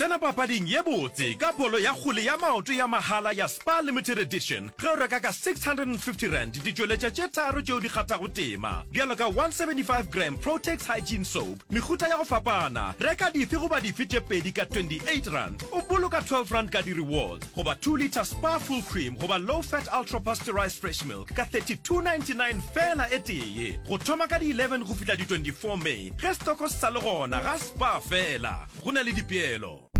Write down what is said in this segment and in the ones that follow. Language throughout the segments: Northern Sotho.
Tsena papading ye botse ka bolo ya kgwele ya maoto ya mahala ya Spar Limited Edition ge o reka ka R650 ditšweletša tše tharo tšeo di kgathago tema, bjalo ka 175 gram Protex Hygiene Soap, mehuta ya go fapana. Reka dife goba dife tše pedi ka R28, o boloka R12 ka di-rewards, goba 2 litre Spar Full Cream goba Low Fat Ultra Pasteurized Fresh Milk ka R32.99 feela e tee. Go thoma ka di 11 go fihla di 24 May ge setoko se sa le gona ga Spar feela. Go na le dipeelo.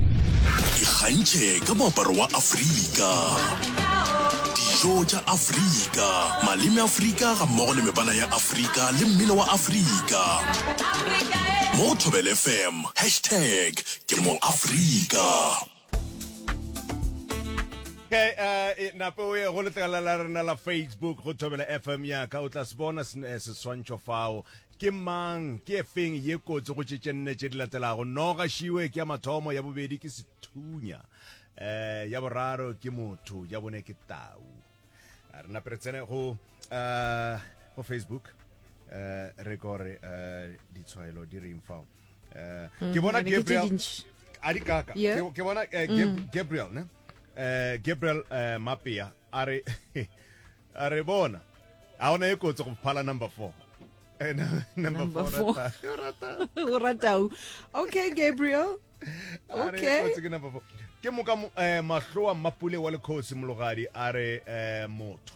Ikgantšhe ka moaparo wa Afrika, dijo tša Afrika, maleme a Afrika gammogo le mebala ya Afrika le mmino wa Afrika. Mo go Thobel FM, hashtag ke moAfrika. Ke a e nape o ye go letlakala la rena la Facebook go Thobela FM ya ka o tla se bona seswantšho fao Ke mang? Ke e feng ye kotsi go tše tše nne tše di latelago? Noga, šiwe, ke ya mathomo, ya bobedi ke sethunya, um ya boraro ke motho, ya bone ke tau. A re nape re tsene go um go Facebook um re ko re um ditshwaelo di reng fao um ke bona Ebe ke tše Gabriel dintši. a di kaka Yeah. ke ke bona eh, Gab- Gabriel ne eh Gabriel eh Mapea a re A re bona, a ona e kotsi go phala number four. Eh, number four. O ratau. Okay, Gabriel. Okay. Ke moka eh, mahloa mapule wa lekhosi mologadi a re eh, motho.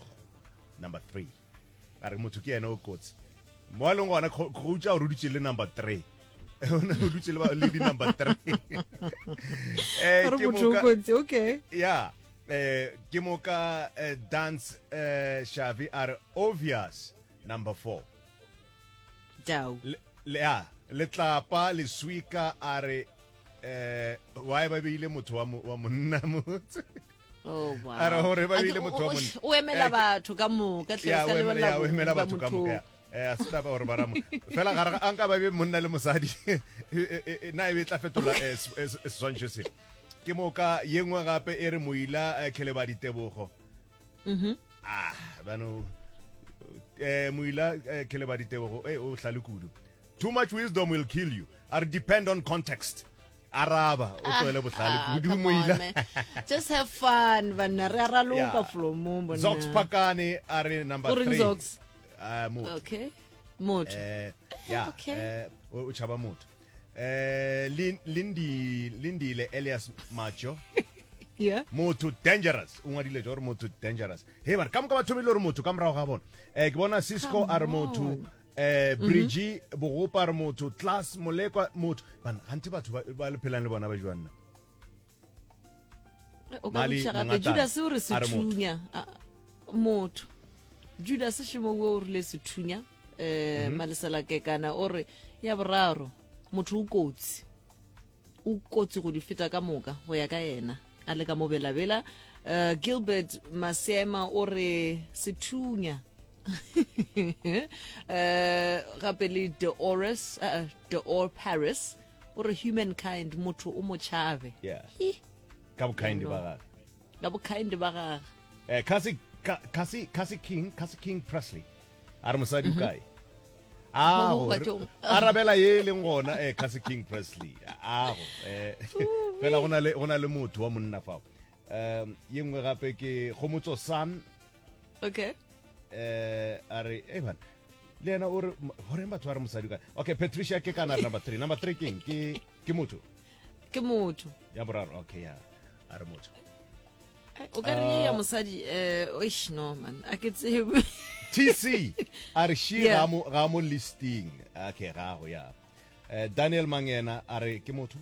Number three. A re motho ke yena o kotsi. Mo a leng gona go utša o ruditše le number three. o ne o dutse le di number three eh ke moka okay ya Eh, ke moka eh, dance eh, shavi a re obvious number four tau Le- le- ya, letlapa leswika a re eh, why ba beile motho wa mo- wa monna motse Oh, wow. A re gore ba A ke- beile motho wa o- o- monna. o emela Eh, ke- batho ka moka hle, ya ka o emela- lebella ya, o emela ba batho ka motho. moka ya. Eh, a se taba gore ba ramo fela gare ga- a nka ba be monna le mosadi e- e- e- na e be e tla fetola eh, se- eh, se- seswantšho se Ke moka ye nngwe gape e re Moila eh, Khelebadi Tebogo. Mhm. Ah, bano eh Moila eh, Khelebadi Tebogo eh o hlale kudu. Too much wisdom will kill you. Are depend on context. Araba o tsoele bohlale Ah, kudu come on, Moila. man. just have fun banna re a raloka Yeah. flomong bonna. Zox Pakane a re number O reng 3. Zox? Ah, motho. okay motho Eh, yeah, Okay. eh, o o tšhaba motho. Eh, Lin- Lindi- lindile elias macho yeah motho dangerous o ngwadile jo gore motho dangerous he bare ka moka ba thomile gore motho ka morago ga bona um ke bona cisco a re motho um brigi bogopa a re motho class molekwa motho bana gante batho ba ba le phelang le bona ba jwanna o ka buša gape judase o re sethunya motho judase šemo wo o rile sethunya um mhm. maleselakekana o re ya boraro motho o kotsi o kotsi go di feta ka moka go ya ka yena a le ka mobelabela um gilbert masema o re sethunya um gape le deores uh, deor paris o re humankind motho o motšhabe yeah. ka bokindi ba gage ka bokindi ba gage eh, kasi, kasi, kasi king kasi king presley a re mosadi o mhm. kae ago arabela ye e leng gona eh, kasi king presley ago eh, fela go na le motho wa monna fao um ye nngwe gape ke gomotso sun okay eh a re e bana le yena o re goreng batho ba re mosadi ka okay patricia ke kana number three number three keng ke ke motho ke motho ya boraro okay ya a re motho eh, o ka re ya ah. mosadi eh oish no man a ke tsebe tc a re shi ga mo ga mo listing okay ga go ya eh, daniel mangena a re ke motho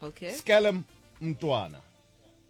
okay skelem mtwana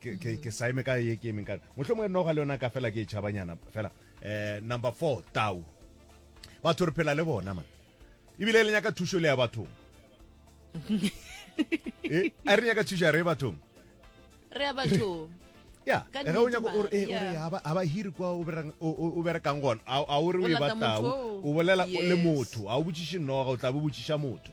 ke ke ke sa eme ka ye ke emeng ka motlho mongwe noga le yona ka fela ke e tšhabanyana fela eh number 4 tau batho re phela le bona man ebile le nyaka thušo le ya bathong eh a re nyaka thušo ya re bathong re ya bathong ya Ka ge o nnete, nyaka o re- eh, o re yeah. haba- haba hiri kwa o berang- o- o- o berekang gona a a o re o O e lata batau motho oo. o bolela o le Yes. motho a o botšiše noga o tla bo botšiša motho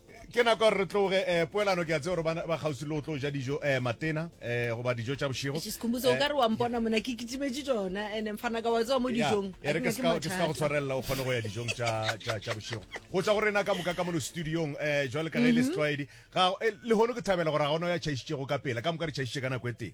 Ke nako ya gore re tloge eh, poelano ke a tseo gore ba ba kgauswi le go tlo ja dijo eh, matena eh, goba dijo tša bošego Eish, Sikhumbuzo, o Eh, ka re wa mpona mona ke kitimetše tšona ande mfana ka wa tsewa mo ya, dijong e re ke se ka ke se ka go tshwarelela o kgone go ya dijong tša tša- tša bošego go tšwa go rena ka moka ka mono studiong um jwale ka ge e le setlwaedi ga- eh, lehono ke thabela gore ga gona ya tšhaišitšego ka pela ka moka re tšhaišitše ka nako e tee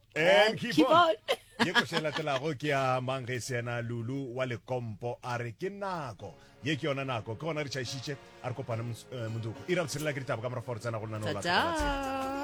And keep, keep on. ke go se latelago ke ya mang ge se yena lulu wa lekompo a re ke nako ye ke yona nako ke gona re tšhaišitše a re kopane eh, motsuko ira botshelela ke ditaba ka morafa gore tsena go nna no Tata.